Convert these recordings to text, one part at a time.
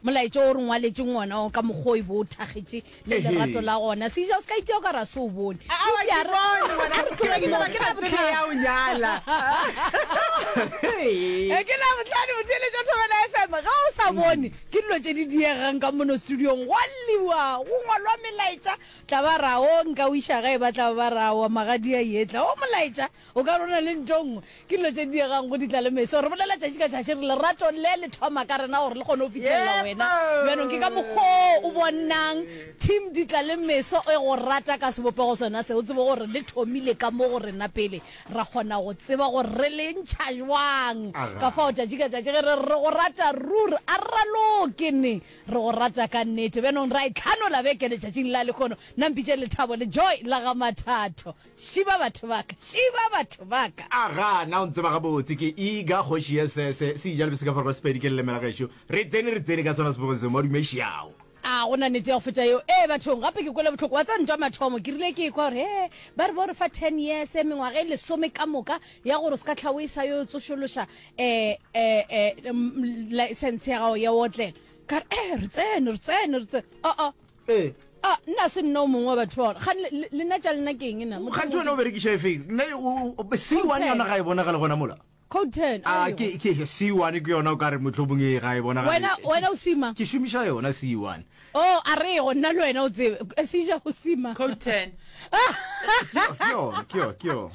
Molaetša wo o re ngwaletšeng wona wo ka mokgwa o e be o thakgetše le lerato la gona. Seija, o se ka itia o ka re a se o bone. Eupša a re, A re tlogeng ke batho ba bohlale. Ke Labohlano, botheeletši wa Thobela FM. Ge o sa bone, ke dilo tše di diegang ka mono studiong. Go a lliwa, go ngwalwa melaetša. Tla ba ra, Oo, nka o iša gae. Ba tla ba ba ra, Aowa, magadia, yetla. Oo, molaetša. O ka re o na le ntho nngwe, ke dilo tše diegang go di tla le meso. Re bolela tšatši ka tšatši re lerato le le thoma ka rena gore le kgone go fithelela wena. Bjanong ke ka mokgwa o o bonang Team di tla le meso e go rata ka sebopego sona se. O tsebe gore le thomile ka mo go rena pele ra kgona go tseba gore re le ntšha bjang. Ka fao tšatši ka tšatši ge re re re go rata ruri, a re raloke ne re go rata ka nnete. Bjanong ra e tlhanola beke letšatšing la lehono. Nna mpitše Lethabo le Joy la ga Mathatho. Šiba batho ba ka, šiba batho ba ka. Aga, na o ntseba gabotse, ke Iga, kgoši ya se, se, seija le beseka forogo Sepedi, ke lelemela gešo. Re tsene, re tsene ka sona sebopego seo, madume, šiao. A go na nete ya go feta yeo? Ee, bathong. Gape ke kwele bohloko. Wa tseba, ntwa mathomo, ke rile ke ekwa gore, he, ba re bo re fa ten years, mengwaga e lesome ka moka, ya gore o se ka tlha o e sa yo tsošološa, eh, eh, eh, mm, license ya gago ya go otlela. Ka re, ee, re tsene, re tsene, re tsene. Oh-oh. ee a ah, nna se nna o mongwe wa batho ba ga lena tša lena ke eng na gantsi wena o berekiša e feng nna c one yona ga e bonagale gona mola coten a ah, ke ke c one ke yona o ka re motlhobong e ga e bonagale wena wena o sima ke šomiša yona c one o oh, a re go nna le wena o tsebe e seja go sima coten ke yona ke yona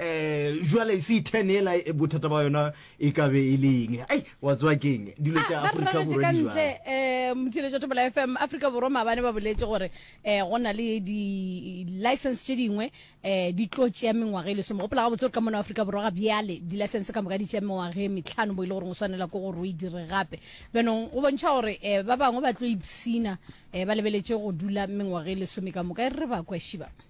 um jale c ten ela e, bothata ba yona e ka be e le eng ei wa tsewa keng dilo tša aforika borwa di jwang? kantle um mothiletšo topola f m aforika borwa maabane ba boletse gore um go na le di-license tše dingwe um di tlo tšea mengwaga e lesome gopola gabotse gore ka mona aforika borwa ga bjale di-license ka moka di tšea mengwaga e metlhano bo e le goreng o swanela ke gore o e dire gape bjanong go bontšha gore um ba bangwe ba tlo ipsina um ba lebeletše go dula mengwaga e lesome ka moka e re re ba kweshiba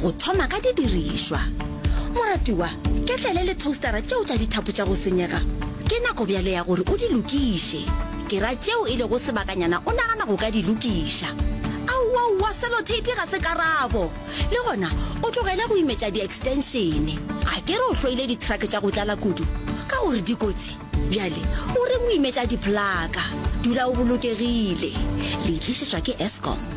Go thoma ka didirišwa. Moratiwa, ketlele le toastara tšeo tša dithapo tša go senyega. Ke nako bjale ya gore o di lokiše. Ke ra tšeo e lego sebakanyana o nagana go ka di lokiša. Aowaowa, seloteipi ga se karabo! Le gona o tlogele go imetša diekstenšene. A ke re o hloile dithrake tša go tlala kudu ka gore di kotsi? Bjale o reng o imetša diphlaka? Dula o bolokegile. Le e tlišetšwa ke Eskom.